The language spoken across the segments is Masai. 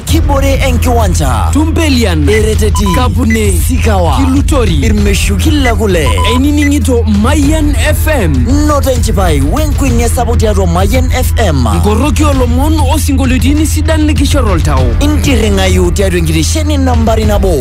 kibore enkiwanja Tumpelian, ereteti Kapune, sikawa Kilutori, irmeshuki le kule einining'ito Mayian FM, noto enchipai wenkuenia sapuk tiatua mayian fm nkoroki olomon osinkolioitin sidan likishor oltau. intirring'ayu tiatua enkitesheni nambari nabo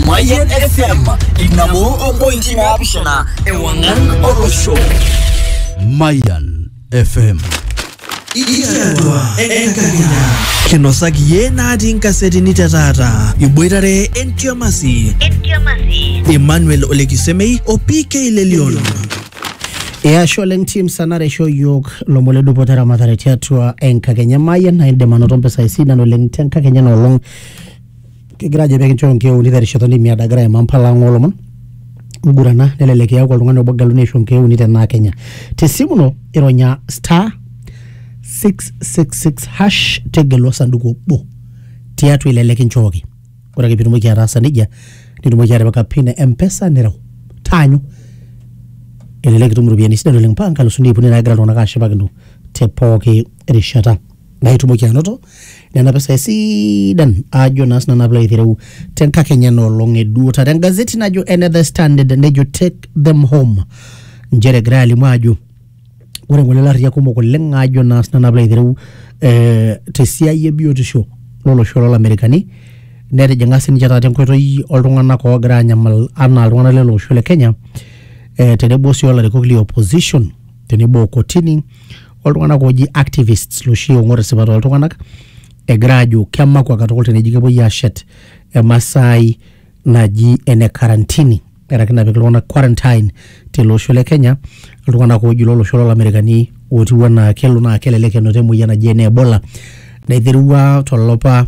mayian fm inabo ompointi naapishana ewang'an olosho Mayan FM. Ikiatua enkakenya. Kinosaki iyie natii nkasetini te taata. Iboitare entiamasi. Emmanuel Olekisemei o PK Lelion. Eyasho oleng team sanare aisho yiok lomon le dupoto eramatare tiatua enkakenya mayian naa indim anoto mpisai sidan oleng te nkakenya ena olong kigira ajo pekinchoo nkeuni terishata olemiado agira aimaa mpala ang olomon ngurana nelelek iyaku oltung'ani obo geluni aisho nkeuni tenaa kenya tesimu ino ironya star 666 hash tegelu osanduku obo tiatua ile likinchooki ore ake pitumoki ataasa nejia nitumoki atipika pin e mpesa nireu taanyu elelek itum iropiyiani sidan oleng paa nkalusuni iip uni naagira iltung'anak ashipakino te pooki rishata naa itumoki anoto nena pisai sidan ajo naa sinanu apilo aitereu tenkakenya enoolong eduo taata engazeti najo ene the standard nejo take them home nchere egirai alimu ajo ore ngole larriyak kumok oleng ajo naa sinanu apilo aitereu eh, tesiai ebiotisho lolosho lolamerikani netijing'a sininche taata enkoitoi oltung'anak oogira anyamal anaa iltung'anak lele osho le kenya eh, tenebo sii olarikok le opposition tenebo o kotini oltung'anak ooji activists loshi oong'or esipata oltung'anak egira aajo kemakwa katukul teneji kepuoi aashet emasaai naji ene karantini earaki napik iltung'anak quarantine tele osho le Kenya iltung'anak ooji lolosho lolamerikani ootiu enaa kelo naa kelelek enoto emoyian naji ene ebola naiterua tolapa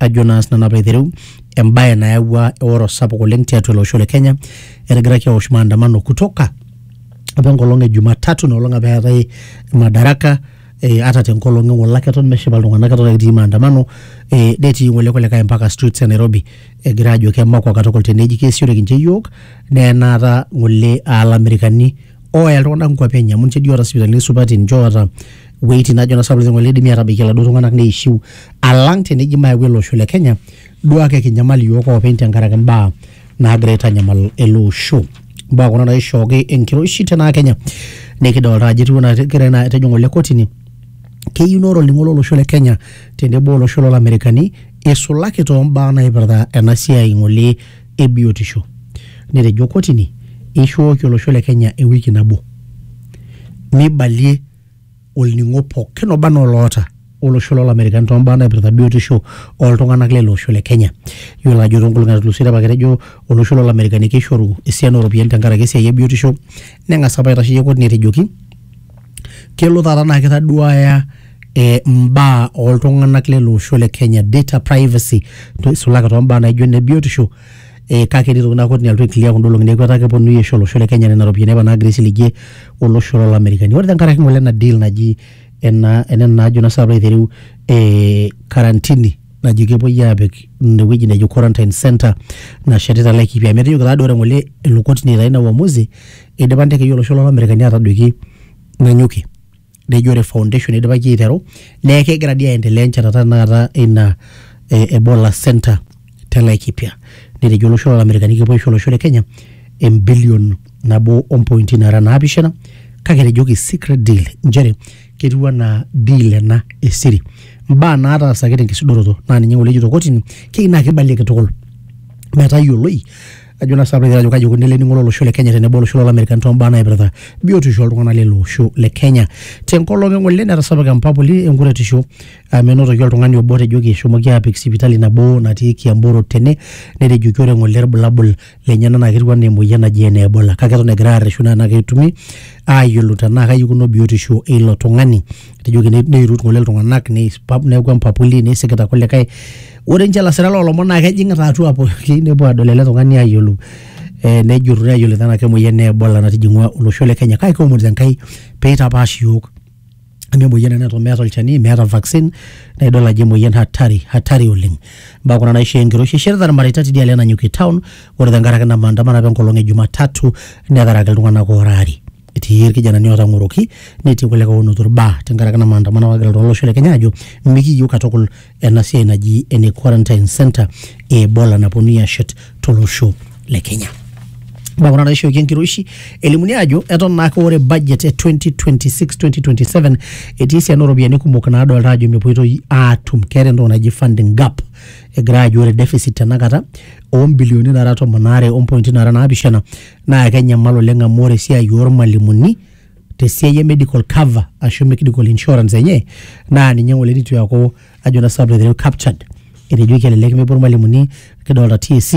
ajo naa sinanu apa aitereu embaye nayawua eoro sapuk oleng tiatua ele osho le Kenya etigiraki aosh maandamano kutoka apa enkolong e Jumatatu ina olong apa eetae madaraka eh, ata tenkolong e ng'ole ake eton meshipa iltung'anak eton ake etii maandamano eh, netii ng'ole kulikae mpaka streets e Nairobi egira ajo kemakwa katukul teneji keesioreki ninche iyiook naa enaata ng'ole aa ilamerikani ooya iltung'anak nkuapi enye amu ninche dii oota sipitalini supati ninche oota weitin najo na sapukin ng'ole idimi atabaiki iladuo tung'anak neishiu alang teneji mayau ele osho le Kenya duo ake kinyamal iyiook oopeny tenkaraki imbaa naagira aitanyamal ele osho imbaa kuna naishooki enkiroshi tenaa Kenya nikidolta ajo etiu enaa kegira ina atejo ng'ole kotini keyieu naa ore olning'o lolosho le Kenya tenebo olosho lolamerikani isulaki toombaa naipirta ena siai ng'ole e biotisho netejo kotini eishooki olosho le Kenya ewiki nabo meibalie olning'o pookin oba anaa oloota olosho loo Lamerikani too mbaa naipirta biotisho oo ltung'anak leilo osho le Kenya. Iyiolo ajo too nkolong'i naatulusoitie apa ketejo olosho loo Lamerikani keishoru esiana oo ropiyiani tenkaraki esiai e biotisho neng'as apa aitasheyie kotini etejoki kelo taata naa keitaduaya eh, mbaa oltung'anak lele osho le Kenya data privacy to- isulaki too mbaa naijo ine biotisho eh, kake etii tokitin naa kotini alotu aiclear kunda olong'i neeku etaa keponunui aisho olosho le Kenya nena ropiyiani apa naagira aisiligie olosho loo Lamerikani ore tenkaraki ng'ole ena deal naji ena ena najo naa saapa aitereu eh, karantini naji kepuoi aapik inewueji nejo quarantine center nashetita Laikipia amu etejoki taa doi ore ng'ole elo kotini aitayu ina uamuzi eidipa intekei olosho loo Lamerikani aatadoiki Nanyuki nejo ore foundation idipaki aiteru neeku kegira dii aendelea enchetata tenakata ina eh, ebola center te laikipia netejo olosho lolamerikani kepuo aisho olosho le kenya embilion nabo ompointi nara naapishana kake etejoki secret deal nchere ketiu anaa deal ena esiri mbaa naataasaki tenkisudoroto naa ninye ng'ole ejito kotini keyieu naa kibalieki tukul metayioloi Ejo naa sapre ajo kaji eikoni tening'ore olosho le Kenya tenebo olosho loolamerikan too mbaa naipirta biotisho oltung'ana lele osho le Kenya. Tenkolong e ng'ole netasapuka empapuli enkuretisho amu enotoki oltung'ani obo otejoki eshomoki aapik sipitali nabo natii Kiambu Road tene netejoki ore ng'ole ilbulabul lenyena naa ketiu enaa emoyian naji ene Ebola kake eton egirai aarreshu naa enaa ketumi aayiolou tenaa kaji eikununo biotisho eilo tung'ani. Etejoki neirut ng'ole iltung'anak neaku empapuli neisikita kulikae Ore ninche lasira loo lomon naa kejing'ita atua pooki nepuo aadol ele tung'ani aayiolou eh, nejurru neyiolou tenaa kemoyian e Ebola natijing'ua olosho le Kenya kake kiomon Enkai pee eitapaash iyiook amu emoyian ena neton meeta olchani meeta vaccine naa idol ajo emoyian hatari hatari oleng imbaa kuna naishoo enkiroshi eshirita irmareita tidialo e Nanyuki town ore tenkaraki ina maandamano apa enkolong e Jumatatu netaraki iltung'anak oora aare etii irkijanani ootang'oroki netii kulikae oonoto irbaa tenkaraki ina maandamano apa nagira iltung'anak lolosho le Kenya aajo mikiiyieu katukul ena siai naji ene quarantine center e Ebola naponunui ashet tolosho le Kenya. Mbaa kuna naishooki enkiroshi elimuni ajo eton naake ore budget e 2026-2027 etii esiana ooropiyiani kumok naadolta ajo mepoitoi aatum keeta entoki naji funding gap egira ajo ore deficit tenakata oo mbilioni naara tomon aare ompointi naara naapishana naa kenyamal oleng amu ore esiai ormalimuni tesiai e medical cover ashu medical insurance enye naa ninye ng'ole nitu eaku ajo naa sababu aiteru captured etejoki elelek mepuo irmalimuni kidolta TSC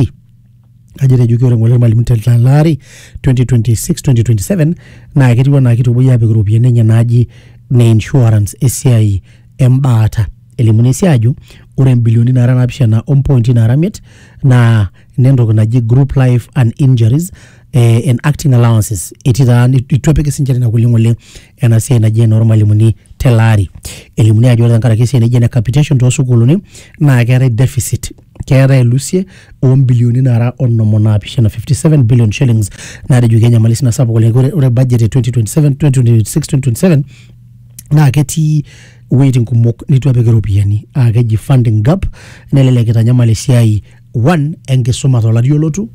ajo etejoki ore ng'ole irmalimuni te tele ari 2026 2027 naa ketiu enaa kitu epuoi apik iropiyiani enye naaji ne insurance esiai embaata elimuni sii ajo ore imbilioni naara naapishana ompointi naara imiet naa inentoki naji group life and injuries eh, en acting allowances etii taa itu epiki sinche nena kulie ng'ole ena siai naji enormalimuni tele ari elimuni ajo ore tenkaraki esiai naji ene capitation toosukuuluni naa keetae deficit keetae elusie ombilioni nara onom onaapishana 57 billion shillings natejoki enyamali sina sapuk oleng ore, ore budget e 2027 2026 2027 naa ketii iwuejitin kumok nitu epiki iropiyiani aa keji funding gap nelelek itanyamal esiai one enkisuma tolari olotu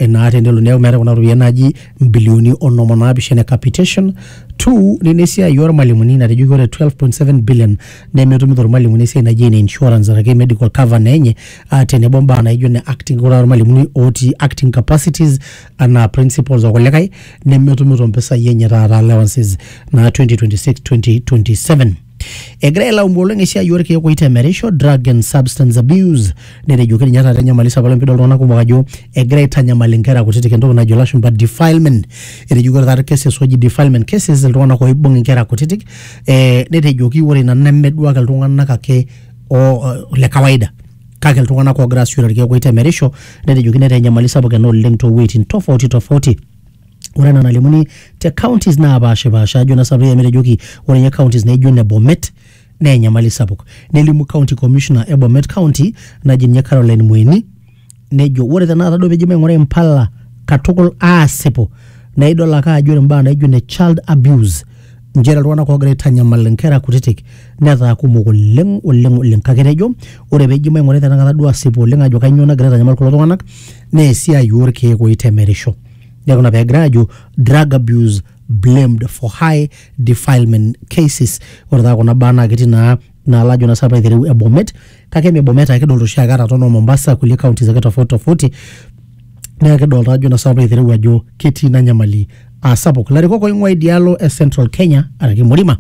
naa tenelo neeku meetae kuna ropiyiani naaji mbilioni onom onaapishana e capitation two nena esiai ormalimuni natejoki ore 12.7 billion nemetumito irmalimuni esiai naji ene insurance araki medical cover naa enye uh, tenebo mbaa naijo ne acting ore irmalimuni otii acting capacities anaa principals okulikae nemetumito mpisai enye taata allowances naa 2026 2027 Egira ailaumu oleng esiai orkeek oitemerisho, drug and substance abuse, netejoki ninye taata enyamali sapuk oleng pidol iltung'anak kumok ajo egira aitanyamal inkera kutitik entoki najo ilashumpa defilement. Etejoki ore taata cases oji defilement cases iltung'anak oibung inkera kutitik, eh netejoki ore ina nemeduak iltung'anak ake o le kawaida. Kake iltung'anak ogira asishore irkeek oitemerisho, netejoki netaa enyamali sapuk ena oleng towueiting tofauti tofauti. ore ena nalimuni te counties napaashipaasha ajo naa sabu yie amu etejoki ore ninye counties naijo ine bomet naa enyamali sapuk nelimu county commissioner e bomet county naji ninye caroline mweni nejo ore tenakata duo pijo maing'ura impala katukul aasipu naa idol ake ajo ore imbaa naijo ine child abuse nchere iltung'anak oogira aitanyamal inkera kutitik netaa kumok oleng oleng oleng kake etejo ore peji maing'urai tenakata duo asipu oleng ajo kainyoo nagira aitanyamal kulo tung'anak naa esiai orkeek oitemerisho neeku ina pegira aajo drug abuse blamed for high defilement cases ore taa kuna baa naa ketii naa naa lajo naa sapa aitereu e Bomet kake me Bomet ake kidolta oshiake ata tono Mombasa kulie counties ake tofauti tofauti naa kidolta ajo naa sapa aitereu ajo ketii ina nyamali aa sapuk ilarikok oing'ua idialo e Central Kenya araki Murima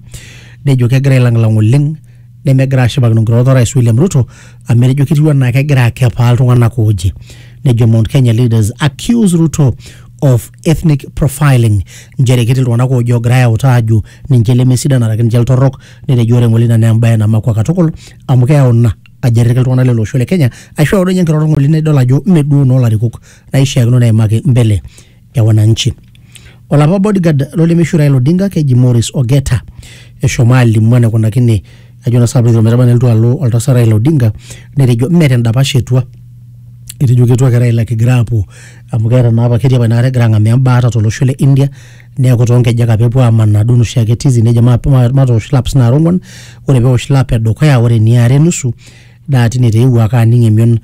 nejo kegira ailang'lang oleng nemegira ashipakino nkirorot orais William Ruto amu etejo ketiu anaa kegira akepaa iltung'anak ooje nejo Mount Kenya leaders accuse Ruto of ethnic profiling nchere ketii iltung'anak ooje ogirai autaa aajo ninche lemesidan araki ninche iltorrok Netejo ore ng'ole ina naa embae namakua katukul amu keyau ina ajerrerki iltung'ana lele osho le Kenya aisho eodo enye enkiroroto ng'ole nidol ajo mme duo noo larikok naishiakino neimaki mbele e wananchi. Olapa bodyguard lo lemeishu Raila Odinga keji Maurice Ogeta eshomo alimu enaikunakine ajo naa sinanu piilo aitereu ometaba nelotu alo oltasat Raila Odinga netejo mme te ndapash etua, etejo ketua ake Raila kigira aapuo amu keeta naapa ketii apa inakata egira ang'amaa embaata to losho le India. neeku toonkejek apa epuo amanaa duo noshi ake tizi nejo ma- ma- matoosh laps nara ong'uan ore peosh lap edukuya ore eniare nusu naa tine taa eewuo ake aning emion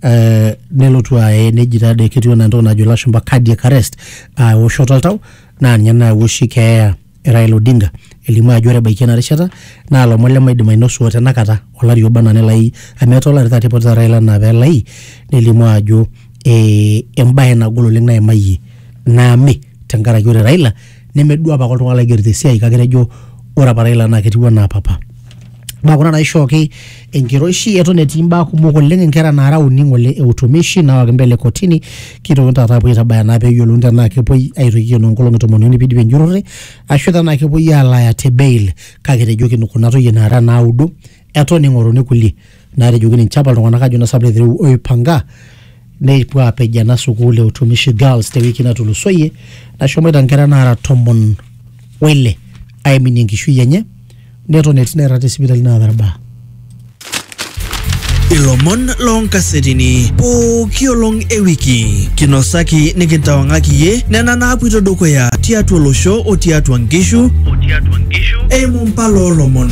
eh, nelotu aye neji taadoi ketiu enaa entoki najo ilashumpa cardiac arrest aa ewoshoto oltau naa ninye nayawua oshi keeya e Raila Odinga elimu ajo ore ebaiki ena rishata naa lomon lemaidim ainosu otenakata olari oba enaa nelai amu etaa olari taata ipotita Raila enaa pelai nelimu ajo eh, embae nagol oleng naimayie naame tenkaraki ore Raila nemedua apake oltung'ani laigerito esiai kake etejo ore apa Raila naa ketiu anaa papa naa kuna naishooki enkiroshi eton etii imbaa kumok oleng inkera naara uni ng'ole e utumishi naawaki mbele kotini kitokini taata apuo aitabaya naa peyiolouni tenaa kepuoi aitoki aikenoo nkolong'i tomon uni pidipi enjurrore ashu tenaa kepuoi alaaya te bail kake etejoki kuna toyie naara naudo eton ing'oruni kulie naatejoki ninche apa iltung'anak ajo nasap letereu oipanga nepuo aapej ena sukuul e utumishi girls tewiki natulusoyie nashomoita nkera naara tomon oile aiminie enkishui enye neton etii nairrag te sipitali naata irbaa ilomon loonkasetini pooki olong e wiki kinosaki nikintawang'aki iyie nena naapuito dukuya tiatua olosho o tiatua nkishu eimu mpala oolomon